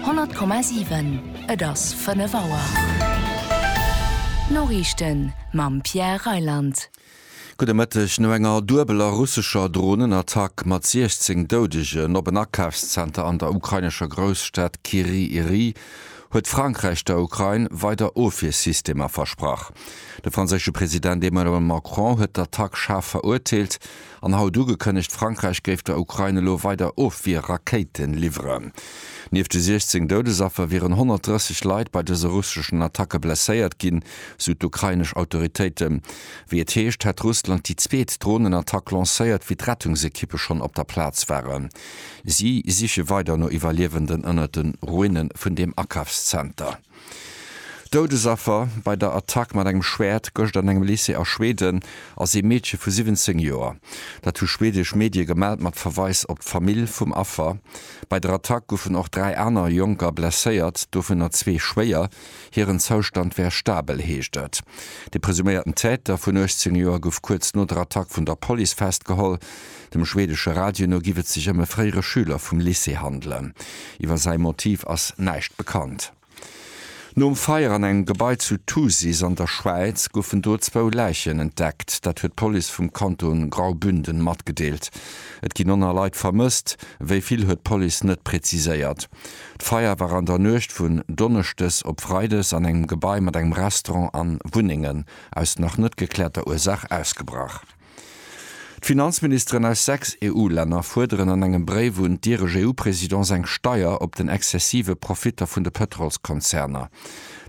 100,7 Et ass 5 Auer. D'Noriichten mam Pierre Reyland. Gudde Mëtteg. No enger duebeler russescher Dronenattack mat 16 Doudegen op en Akafszenter an der ukrainescher Grousstad Kyriy Rih huet Frankräich der Ukrain weider Ofwiersystemer versprach. De franséische President Emmanuel Macron huet d'Attack schaarf verurteelt An haut ugekënnegt, Frankräich géif der Ukrain elo weider Ofwier-Rakéite liwweren. Nieft de 16 Doudesaffer wieren 130 Leit bei dëse russeschen Attacke blesséiert ginn, sou d'ukrainesch Autoritéiten. Wéi et heescht, hätt Russland déi zweet Dronenattack lancéiert, wéi d'Rettungsekippe schonn op der Plaz waren. Si siche weider no Iwwerliewenden ënnert de Ruine vun deem Akafszenter. Doudesaffer bei der Attack mat engem Schwäert gëscht an engem Lycée a Schweden ass ee Meedche vu 17 Joer. Dat hu schwedesch Medie gemellt mat Verweis op d'Famill vum Affer. Bei der Attack goufen och dräi aner Jonker blesséiert, dovunner zwee schwéier. Hiren Zoustand wär stabel, heescht et. De presuméierten Täter vun 18 Joer gouf kuerz no der Attack vun der Police festgeholl. Dem schweedesche Radio no giff et sech ëm e fréiere Schüler vum Lycée handelen. Iwwer säi Motiv ass näischt bekannt. Nom Feier an engem Gebai zu Thusis an der Schwäiz goufen do zwou Läichen entdeckt. Dat huet d'Police vum Kanton Graubünden matgedeelt. Et ginn 9 Leit vermësst, wéi vill huet d'Police net preziséiert. D'Feier war an der Nuecht vun Donneschdes op Freides an engem Gebai mat engem Restaurant a Wunnengen aus nach net gekläerter Ursaach ausgebrach. D'Finanzministeren aus sechs EU-Länner fuerderen an engem Bréif un d'Ireg-EU-Présidence eng Steier op den exzessive Profitter vun de Pëtrolskonzerner.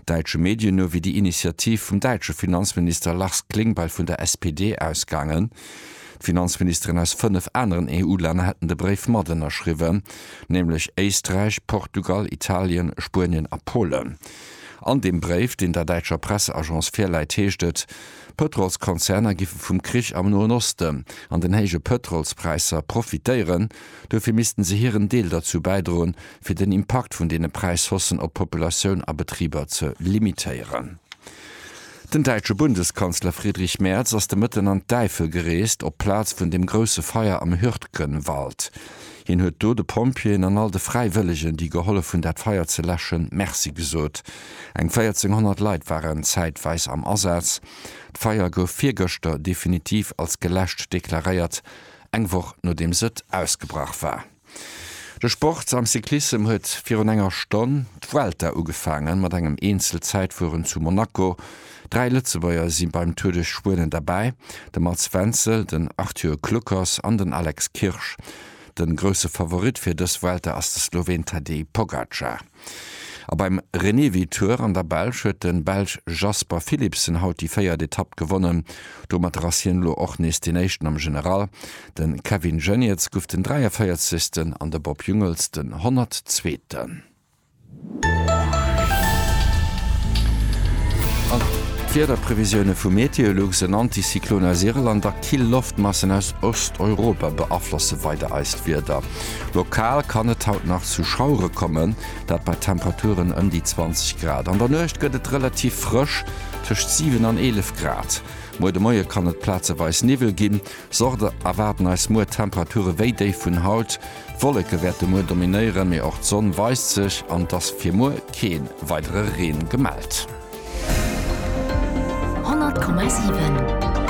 Däitsche Medien no wier déi Initiativ vum däitsche Finanzminister Lars Klingbeil vun der SPD ausgaangen. D'Finanzministeren aus fënnef aneren EU-Länner hätten de Bréif mat ënnerschriwwen, nämlech Éisträich, Portugal, Italien, Spuenien a Polen. An deem Bréif, deen der däitscher Presseagence virläit, heescht et, Pëtrolskonzerner giffe vum Krich am Noen Osten an den héije Pëtrolspräisser profitéieren. Dofir missten se hiren Deel derzou bäidroen, fir den Impakt vun deene Präishaussen op d'Populatioun a Betriber ze limitéieren. Den däitsche Bundeskanzler Friedrich Merz ass de Mëtten an d'Äifel gereest, op d'Plaz vun dem grousse Feier am Hürtgenwald. Hien huet do de Pompjeeën an all de Fräiwëllegen, déi gehollef hunn, dat Feier ze läschen, Merci gesot. Eng 1.400 Leit waren zäitweis am Asaz. D'Feier gouf virgëschter definitiv als geläscht deklaréiert, eng Woch nodeems et ausgebrach war. De Sport am Cyclissem huet virun enger Stonn d'Vuelta ugefaangen, mat engem Eenzelzäitfueren zu Monaco. Dräi Lëtzebuerger si beim Tour duerch Spuenen derbäi, de Mats Wenzel, den Arthur Kluckers an den Alex Kirsch. De grousse Favorit fir dës Vuelta ass de Sloween Tadej Pogacar. A beim Renewi Tour an der Belsch huet de Belsch Jasper Philipsen haut déi véiert Etapp gewonnen. Domatter ass hien elo och nees deen Éischten am General. De Kevin Geniets gouf den 43. an de Bob Jungels den 100. Zweeten. An d'Wiederprevisioune vu Meteolux, En Anticyclone aus Irland a kill Loftmassen aus Osteuropa beaflosse weider eist Wieder. Lokal kann et haut nach zu Schauere kommen, dat bei Temperaturen ëm déi 20 Grad. An der Nuecht gëtt et relativ frësch, tëscht 7 an 11 Grad. Muer de Moie kann et plazeweis Niwwel ginn. Sorte erwaarden eis muer Temperature wéi déi vun haut. D'Wolleke wäerte muer dominéieren, mee och d'Sonn weist sech an et ass fir muer kee weidere Reen gemellt. 100,7.